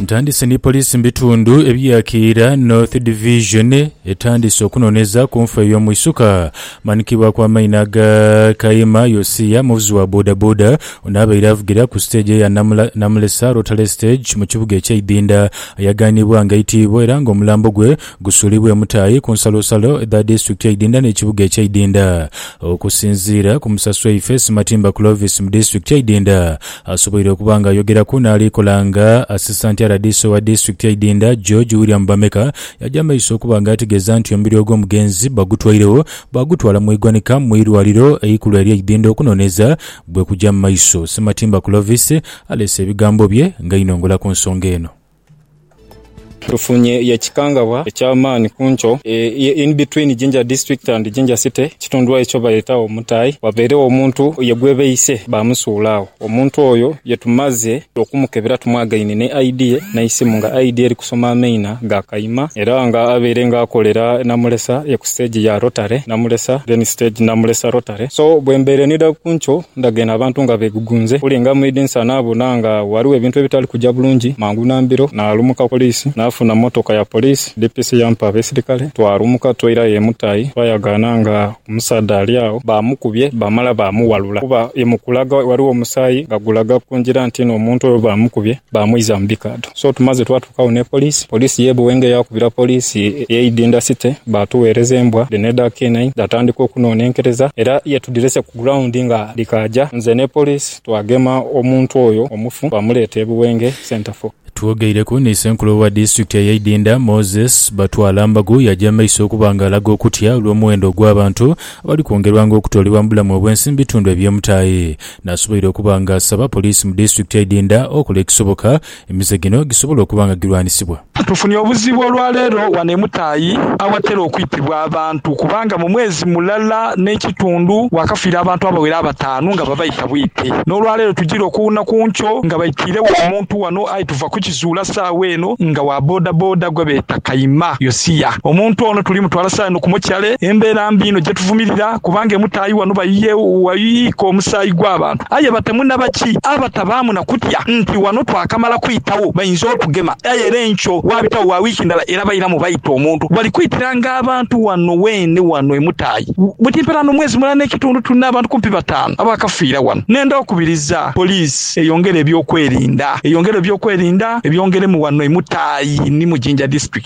Ntandise ni poliisi mu bitundu ebya Kiira North Division etandise okunoneza ku nfa ey'omwisuka manikibwaku amaino aga Kayima Yosia muvuzi wa bodaboda ono abaire avugira ku siteegi eya Namula, Namulesa Rotary Stage mu kibuga ekye Idinda ayaganibwa nga aitiibwa era nga omulambo gwe gusuulibwe mutaai ku nsalosalo dha disitulikiti eidinda n'ekibuga eky'eidinda. Okusinziira ku Musasi waife, Simatimba Clovis mu disitulikiti eidinda asoboire okuba nga ayogeraku n'ali kola nga Asisanti RDC owa disitulikiti eidinda, George William Bameka yaja maiso okuba nga ategeeza nti omubiri ogw'omugenzi bagutwairegho baagutwala mu igwanika mu irwaliro eikulu ery'eidinda okunoneeza bwekuja mu maiso. Simatimba Clovis aleese ebigambo bye nga ainongola ku nsonga eno. Tufunye ye kikangabwa ekya maani ku nkyo eye in between Jinja District and Jinja City ekitundu aye kyo bayeta Omutai wabairegho omuntu ye gwebeise bamusuula agho. Omuntu oyo ye tumaze okumukebera tumwagaine ne ID ye neisimu nga ID eri kusoma amaina ga kaima era nga abaire nga akolera Namulesa ye ku stage ya Rotary Namulesa then stage Namulesa Rotary so bwembaire nidha ku nkyo Ndhaga eno abantu nga beegugunze kulinga mu idinisa naabona nga ghaligho ebintu ebitali kuja bulungi. Mangu na mbiro naalumuka ku poliisi naafuna mmotoka ya poliisi. DPC yampa abeisirikale twalumuka twaira ayo e Mutayi. Twayagaana nga omusaadha ali agho baamukubye baamala baamuwalula kuba ye mu kulaga ghaligho omusaayi nga gulaga ku ngira nti n'omuntu oyo baamukubye baamwiza mu bikaadho. So tumaze twa. Agho ni poliisi, poliisi y'e Buwenge yaakubira poliisi y'e Idinda City baatugheereza embwa dhino edha K9 dhaatandika okunoonenkereza era ye tudhirese ku ground nga dhikaaja. Nze ni poliisi twagema omuntu oyo omufu baamuleeta e Buwenge Centreful. Twogeireku ni Ssenkulu owa disitulikiti eye Idinda, Moses Batwalambagu yaja mu maiso okuba nga alaga okutya olw'omuwendo ogw'abantu abali kwongerwanga okutoolebwa mu bulamu obwensi mu bitundu eby'omutaayi. Nasoboire okuba nga asaba poliisi mu disitulikiti y'e Idinda okola ekisoboka Emize gino gisobola okuba nga girwanisibwa. Tufunye obuzibu olwaleero wano e Mutaayi awatera okwitibwa abantu kubanga mu mwezi mulala n'ekitundu wakafiira abantu abawera abataanu nga babaita bwite. N'olwaleero tujire okuwuuna ku nkyo nga baitiiregho omuntu wano aye tuva kukizuula saagho eno nga wa bodaboda gwebeeta Kayima Yosia. Omuntu ono tuli mutwala saagho eno ku mochare embeera mbi inho gyetuvumirira kubanga e Mutaayi wano bayiika omusaayi gw'abantu. Aye batemu na baki abatabaamu na kutya nti ghano twakamala kwitagho bainza otugema. Aye era enkyo waabitagho gha wiiki ndala era bairamu baita omuntu. Bali kwitiranga abantu ghano weene ghano e Mutayi. Buti mperaano omwezi mulala n'ekitundu tulina abantu kumpi bataanu abaakafiira ghano. Nenda okubiriza poliisi eyongere eby'okwerinda. Eyongeremu eby'okwerinda, ebyongeremu ghano e Mutayi ni mu Jinja District.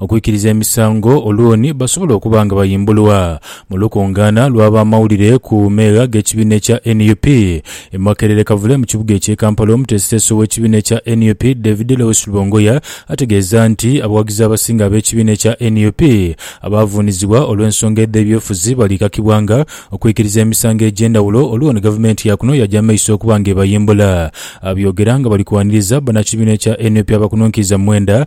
Okwikiriza emisango olwoni basobola okuba nga bayimbulwa mu lukungaana lw'abamawulire ku meegha g'ekibiina ekya nup e Makerere Kavule mu kibuga ekye Kampala Omuteesiteesi ow'ekibiina ekya nup David Lewis Lubongoya ategeeza nti abawagizi abasinga ab'ekibiina ekya nup abaavuunizibwa olw'ensonga edh'ebyofuzi balikakibwa nga okwikiriza emisango egy'endhawulo olwoni gavumenti yaakuno yaja maiso okuba nga ebayimbula Abyogera nga bali kwaniriza banakibiina ekya nup abakununkiriza mu mwenda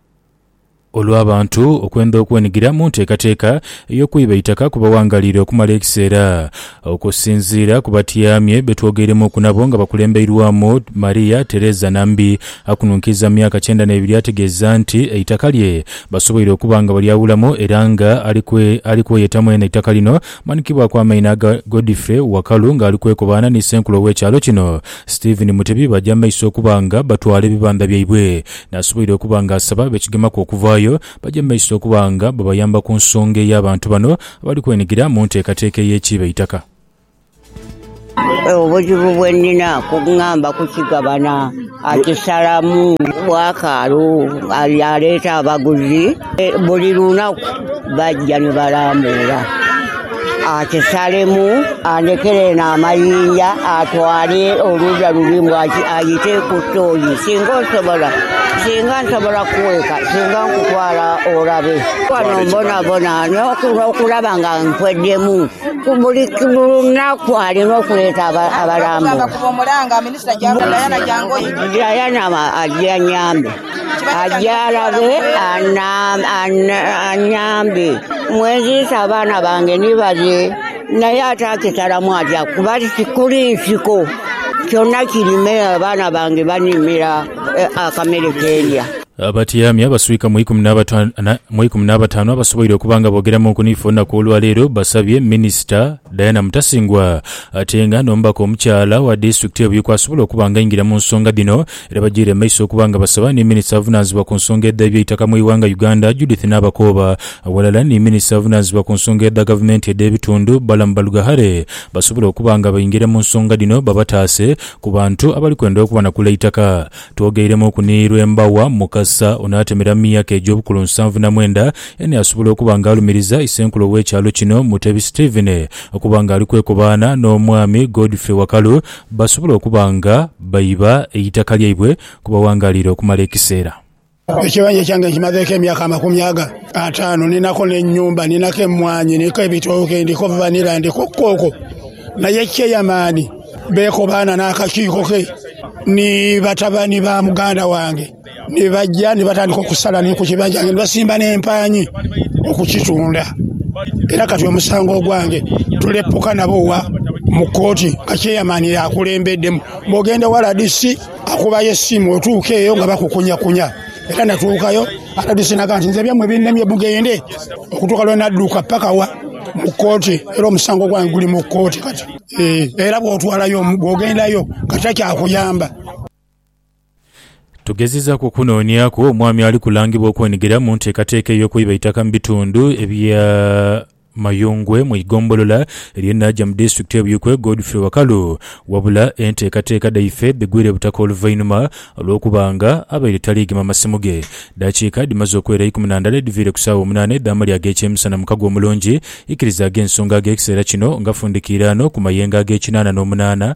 Olw'abantu okwendha okwenigira mu nteekateeka ey'okwiba eitaka ku bawangalire okumala ekiseera. Okusinziira ku batyamye be twogeiremuuku nabo nga bakulembeirwamu Maria Teresa Nambi, akununkiiza mu myaka kyenda n'ebiri ategeeza nti eitaka lye basoboire okuba nga balyawulamu era nga ali kweyeta mwene eitaka lino. Manikibwaku amaino aga Godfrey Wakalu nga ali kwekobaana ni Ssenkulu ow'ekyalo kino Stephen Mutebi baja mu maiso okuba nga batwala ebibandha byaibwe Nasoboire okuba nga asaba abekigemaku okuvaayo baje mu maiso okuba nga babayamba ku nsonga ey'abantu bano abali kwenhigira mu nteekateeka ey'ekiiba eitaka. Obuzibu bwe nnina kungamba kukigabana akisalamu bwakaalu, aleeta abaguzi buli lunaku. Baja ni balambuula ati Salemu andhekere eno amayinja atwale oluuya luli mbu ayite ku tooyi singa osobola. Singa nsobola kukweka singa nkutwala olabe. Wano mbonabona n'okulaba nga nkweddemu ku buli lunaku alina okuleeta abalambuula. Diana aje anyambe. Agyalabe anyambe. Mwenziise abaana bange ni bale, naye ate akitalamu atya kuba tikuli nsiko. Kyona kirime abaana bange banimira akamere ke ndya. Abatyaami abaswika mu ikumi n'abataanu abasoboire okuba nga boogeramuuku niife olunaku olwaleero basabye Minisita Diana Mutasingwa atenga n'omubaka omukyala owa disitulikiti eyo Buikwe asobola okuba nga aingira mu nsonga dhino Era bajaire mu maiso okuba nga basaba ni Minisita avunaanzibwa ku nsonga edha eby'eitaka mu ighanga Uganda, Judith Nabakooba aghalala ni Minisita avunaanzibwa ku nsonga edha gavumenti edh'ebitundu, Balaam Barugahare basobole okuba nga baingira mu nsonga dhino babataase ku bantu abali kwenda okubanakula eitaka. Twogeeiremuuku ni Lwembawa Mukasa ono atemera mu myaka egy'obukulu nsanvu na mwenda eni asobola okuba nga alumiriza Isenkulu ow'ekyalo kino Mutebi Stephen okuba nga ali kwekobaana n'Omwami Godfrey Wakalu basobola okuba nga baiba eitaka lyaibwe kwe bawangalira okumala ekiseera. Ekibanja kyange nkimazeeku emyaka amakumi aga ataanu. Ninako n'ennyumba, ninako emmwaanyi, ndiko ebitooke, ndiko vanilla, ndiko kkooko. Naye Chairman beekobaana n'akakiiko ke ni batabani ba muganda wange. Ni baja ni batandika okusala ni ku kibanja kyange, ni basimba n'empaanhi okukitunda. Era kati omusango ogwange tulepuka nabo wa mu kooti nga Chairman y'akulembeddemu. Bw'ogenda ewa rdc akubayo essimu otuuka eyo nga bakukunyakunya. Era natuukayo rdc n'agamba nti nze ebyammwe binnemye mugende. Okutuuka lwe nadduka paka wa? Mu kooti. Era omusango gwange guli mu kooti kati. Era bw'otwalayo omu, bw'ogendayo kati takyakuyamba. Tugezezaaku okunooniaku omwami ali kulangibwa okwenigira mu nteekateeka ey'okwiba eitaka mu bitundu ebya Mayungwe mu igombolola erye Naja mu disitulikiti eBuikwe, Godfrey Wakalu wabula enteekateeka dhaife dhigwire butaka oluvainhuma olw'okuba nga abaire tali gema masimu ge. Daakiika dhimaze okwera ikumi na ndala edhiviire ku saawa omunaana edh'amalya ag'ekyemisana mu kago omulungi, ikirizaaga ensonga ag'ekiseera kino nga fundikiiraano ku mayengo ag'ekinaana n'omunaana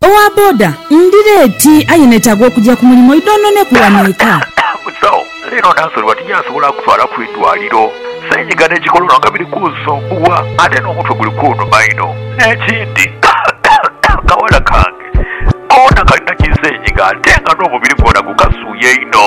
Owa boda ndi leeti aye netaaga okugya ku mulimu idhonhoneku wano eka. Mzee o, leero naasonebwa tinyasobola kutwala ku idwaliro. Senyiga ne kikolono nga biri kunsumbuwa ate n'omutwe guli kunuma inho. N'ekindi kawala kange koona kalina ki senyiga ate nga n'omubiri gwona gukasuuya inho.